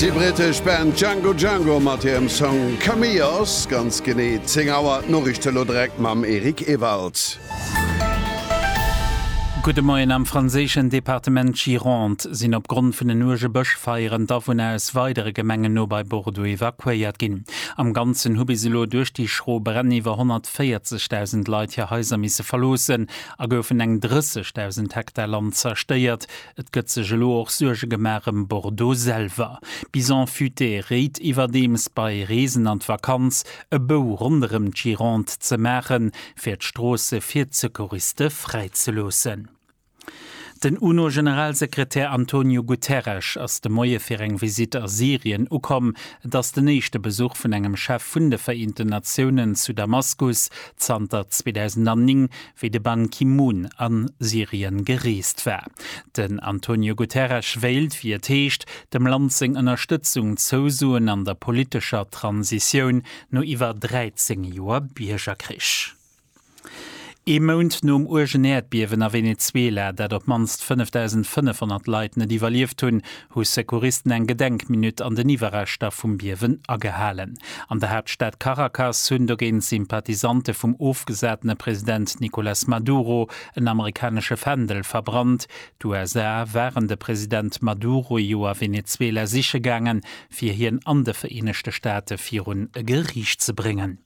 Déi brittesch Band Django Django mat hirem Song Cameos. Ganz genee 10 Auer, d'Noriichte elo direkt mam Eric Ewald. Gudde Moien, Am franséischen Departement Gironde sinn opgrond vun den uerge Bëschfeieren d'Awunner aus weidere Gemengen no bei Bordeaux evakuéiert ginn. Am Ganzen hu bis elo duerch déi schro Bränn iwwer 140.000 Leit hir Haiser misse verloossen a goufen eng 30.000 Hektar Land zerstéiert, Et gëtt sech elo och Suerge gemaach ëm Bordeaux selwer. Bison futé réit iwwerdeems, bei Reesen an d'Vakanz e Bou ronderëm d'Gironde ze maachen, fir d'Stroosse fir d'Secouriste fräi ze loossen. Den UNO-Generalsekretär Antonio Guterres ass de Moie fir eng Visitt a Syrien ukomm. Et ass den éischte Besuch vun engem Chef vun de Vereenten Natiounen zu Damaskus zanter 2009, wéi de Ban Ki-moon a Syrien gereest war. Den Antonio Guterres wéilt, wéi et heescht, dem Land seng Ënnerstëtzung zousoen an der politescher Transitioun no iwwer 13 Joer Biergerkrich. Ee Mount nom uergen Äerdbiewen a Venezuela, dat op d'mannst 5.500 Leit net iwwerlieft hunn, hu Secouristen eng Gedenkminutt an den Iwwerreschter vum Biewen agehalen. An der Haaptstad Caracas hunn dogéint Sympathisante vum ofgesatene President Nicolas Maduro en amerikanesche Fändel verbrannt. D'USA waren de President Maduro jo a Venezuela siche gaangen, fir hien an de Vereenegte Staate virun e Geriicht ze bréngen.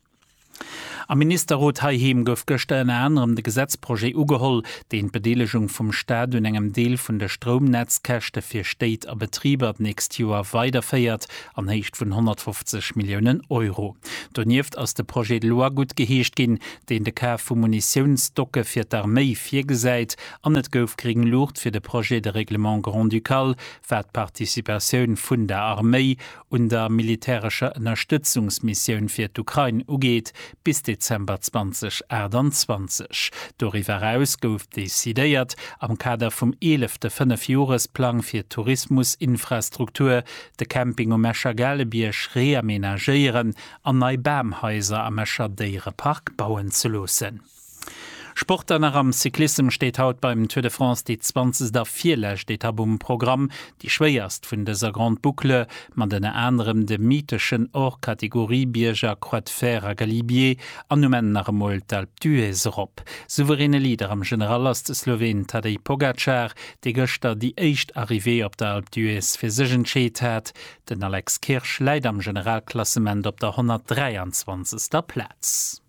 Am Ministerrot heiheem gouf gëschter ënner anerem de Gesetzprojet ugeholl, deen d'Bedeelegung vum Staat un engem Deel vun de Stroumnetzkäschte fir Stéit a Betriber d'nächst Joer weiderféiert an Héicht vun 150 Milliounen Euro. Donieft ass de Projet de loi guttgeheescht ginn, deen de Kaf vu Munitiounsstocke fir d'Arméi virgesäit an et gouf gréng Luucht fir de Projet de règlement grand-ducal, wat d'Participatioun vun der Arméi un der militärescher Ënnerstëtzungsmissioun fir d'Ukrain ugeet, bis Dezember 2028. Doriwwer eraus gouf decidéiert, am Kader vum eelefte Fënnefjoresplang fir d'Tourismusinfrastruktur, de Camping um Escher Gaalebierg reamenagéieren an nei Bamhaiser am Escher Déierepark bauen ze loossen. Sport an nach am Cyclissem steet haut beim Tour de France déi zwanzegst a virlescht Etapp um Programm, déi schwéierst vun dëser Grande Boucle, mat ënner anerem de mytheschen Hors-Catégorie-Bierger Croix de Fer a Galibier an um Enn nach emol d'Alpe d'Huez erop. Souveräne Leader am General ass de Sloween Tadej Pogacar, dee gëschter déi éischt Arrivée op der Alpe d'Huez fir sech entscheet hat. Den Alex Kirsch läit am Generalklassement op der 123. Plaz.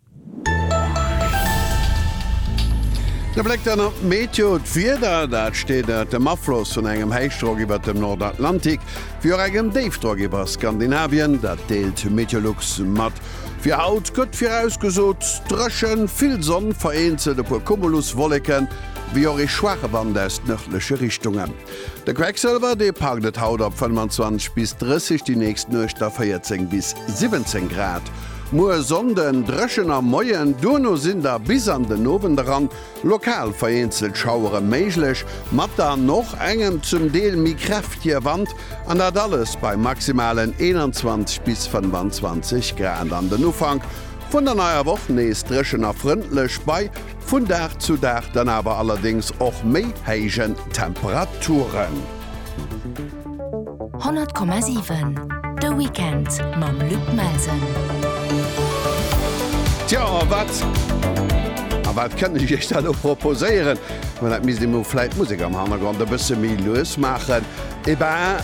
E Bléck dann op d'Meteo, D'Wieder, dat steet ënnert dem Afloss vun engem Héichdrock iwwert dem Nordatlantik, wéi och engem Déifdrock iwwer Skandinavien, dat deelt Meteolux mat. Fir haut gëtt virausgesot, dréchen, vill Sonn, vereenzelt e puer Cumuluswolleken, wéi och ee schwaache Wand aus nërdleche Richtungen. De Quecksilwer, dee packt et haut op 25 bis 30, déi nächst Nuecht a 14 bis 17 Grad. Muer Sonnden dréchen am Moien, duerno sinn da bis an den Owend eran lokal vereenzelt Schauere méiglech, mat dann och engem zum Deel méi kräftige Wand, an dat alles bei maximalen 21 bis 25 Grad. An den Ufank vun der neier Woch nees dréchen a frëndlech bei. Vun Dag zu Dag dann awer allerdéngs och méi héijen Temperaturen. 100,7 De Weekend mam Luc Melsen. Tjo, a wat, a wat kënnt ech iech da lo proposéieren? Ma dat misst ee mol vläit d'Musek am Hannergrond e bësse méi lues maachen. Et ben,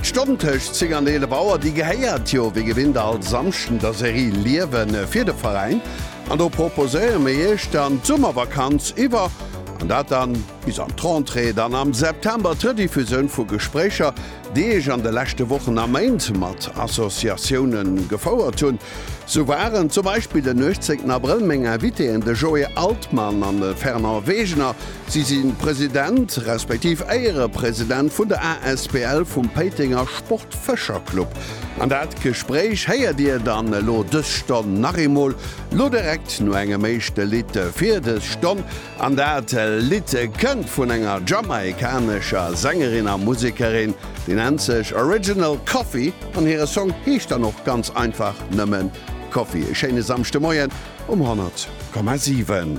d'Stonn tëscht 10 an 11 Auer, déi gehéiert jo wéi gewinnt all Samschden der Serie Liewen fir de Veräin. An do proposéiere mir Iech dann d'Summervakanz iwwer, an dat dann bis an d'Rentrée, dann am September d'Rediffusioun vu Gespréicher, déi ech an de leschte Wochen a Méint mat Associatiounen gefouert hunn. Sou waren zum Beispill den 18 Abrëll meng Invitéen de Joé Altmann an de Fernand Wegener. Si si President, respektiv Éierepresident vun der asbl vum Péitenger Sportfëscherclub. An dat Gespréich héiert Dir dann elo dës Stonn nach eemol, lo direkt no engem éischte Lidd fir dës Stonn. An dat Lidd kënnt vun enger jamaikanescher Sängerin a Musekerin, déi nennt sech Original Coffee an hire Song heescht dann och ganz einfach nëmmen Coffee. E schéine Samschdemoien um 100,7.